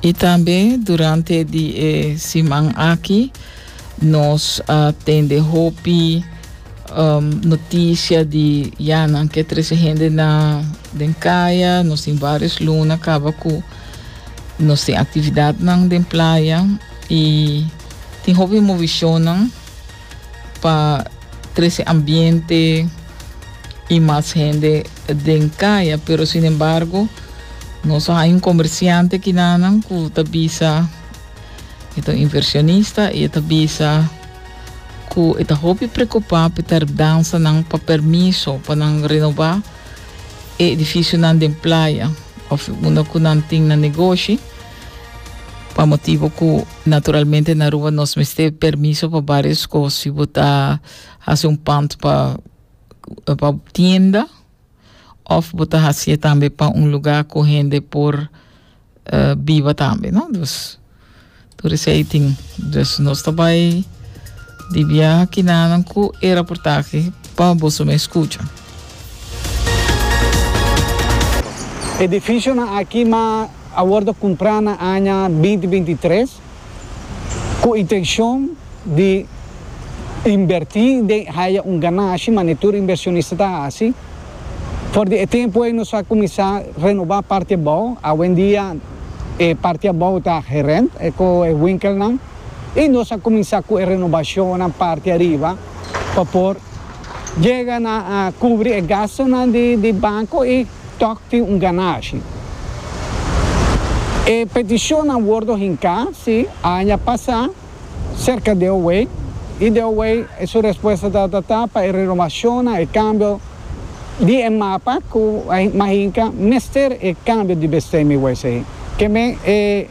I tambe durante di e siman aki nos a tende hopi um, noticia di ya nan ke trece hende na den kaya, nos tin varios luna kaba ku nos tin actividadnan den playa i tin hopi movishonnan. pa trece ambiente y mas hende den caya pero sin embargo nos a hay un comerciante kinanan cu ta bisa e ta un inversionista y e ta bisa cu e ta hopi preocupa pe tardansa nan pa permiso pa nan renova e edificio nan den playa of unda cu nan tin nan negoshi. Pa motibu ku naturalmente na Aruba nos mester permiso pa varios kos. Si bo ta hasi un pand pa pa tienda òf bo ta hasié tambe pa un lugá ku hende por biba tambe no. Dus tur esei tin. Dus nos ta bai di biaha kinanan ku e raportahe pa boso mes skucha. Edificionan aki ma a wordo cumpra na aña binti binti tres cu intencion di inberti den haya un ganashi manera tur inversionista ta haci. For di e tempo ey nos a cuminsa renoba parti abao, awendia e parti abao ta gerent cu e winkelnan y nos a cuminsa cu e renobacionnan parti ariba. pa por yega na kubri e gastunan di banko i tòg tin un ganashi. E petishonnan wordo hinká, sí, aña pasá serka di Owei, i di Owei su respuesta tabata pa e renovashonnan, e kambio di e mapa ku Mahinka mester e kambio di bestemming wes ei. Ke men e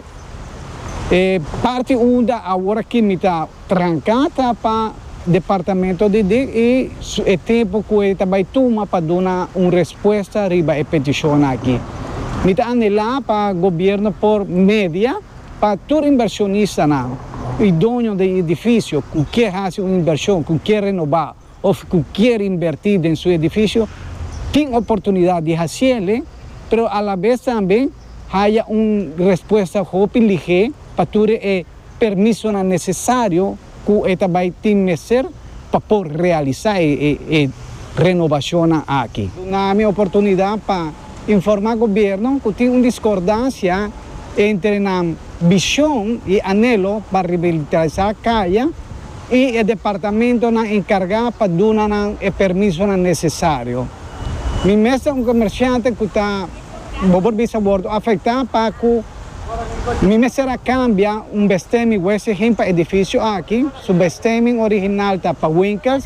parti unda aworakimi ta. Trancá ta pa Departamento di di i su e tempu cu e ta bay tuma pa duna un respuesta riba e peticionnan aki. Mi ta anhelá pa Gobierno por media pa tur inversionista nan i doño den e edificio cu kier haci un inversion, cu kier renobá. of cu kier inverti den su edificio tin oportunidad di haciele, pero a la vez tambe haya un respuesta hopi lihe pa tur e permisonan necesario cu e ta bay tin mester pa por realiza e renovacionnan aki. Duna mi oportunidad pa. Informa gobierno cu tin un discordancia entre nan vision y anhelo pa revitaliza caya y e departamentonan encarga pa duna nan e permisonan necesario. Mi mester un comerciante cu ta bobo bisa wordo afecta pa cu Mi mester a cambia un bestemming wese hin pa edificio aki, su bestemming original ta pa winkels,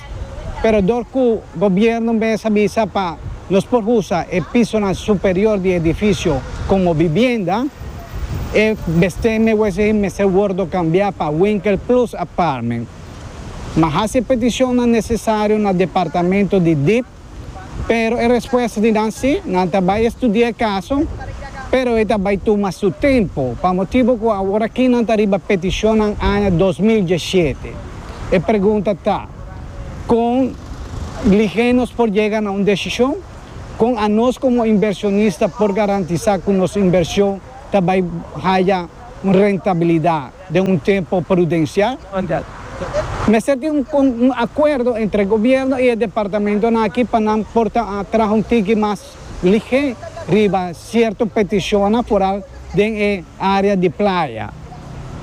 pero dor cu gobierno mes a bisa pa nos por usa e pisonan superior di e edificio como bibienda, e bestemming wese hin mester wordo cambia pa winkel plus apartment. Mi a haci e peticionnan necesario na departamento di dip. Pero e respuesta di nan si, nan ta bai estudia e kaso, pero e ta bai tuma su tempu, pa motibu ku awor aki nan ta riba petishonnan aña dos mil diesiete. E pregunta ta, Kon lihe nos por yega na un desishon? Kon anos komo inversionista por garantisá ku nos invershon ta bai haya un rentabilidat? den un tempo prudensial. Mester tin un akuerdo entre gobièrnu i e departamentonan aki pa nan por ta traha un tiki mas ligé riba sierto petishonnan foral den e área di playa.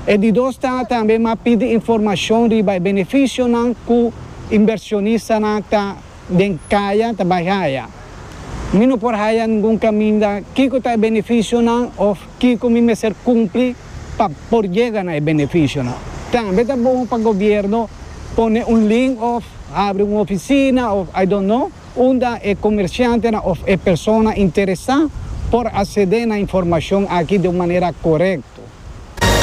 E di dos ta tambe m'a pidi informashon riba e benefisionan ku inbershonistanan ta. Den kaya ta bai haya. Mi no por haya ningun kaminda kiko ta e benefisionan òf kiko mi mester kumpli pa por yega na e benefisionan. Tambe ta bon pa gobièrnu pone un link òf habri un ofisina òf I don't know unda e komershantenan òf e persona interesá por asedé na informashon aki den un manera korekto.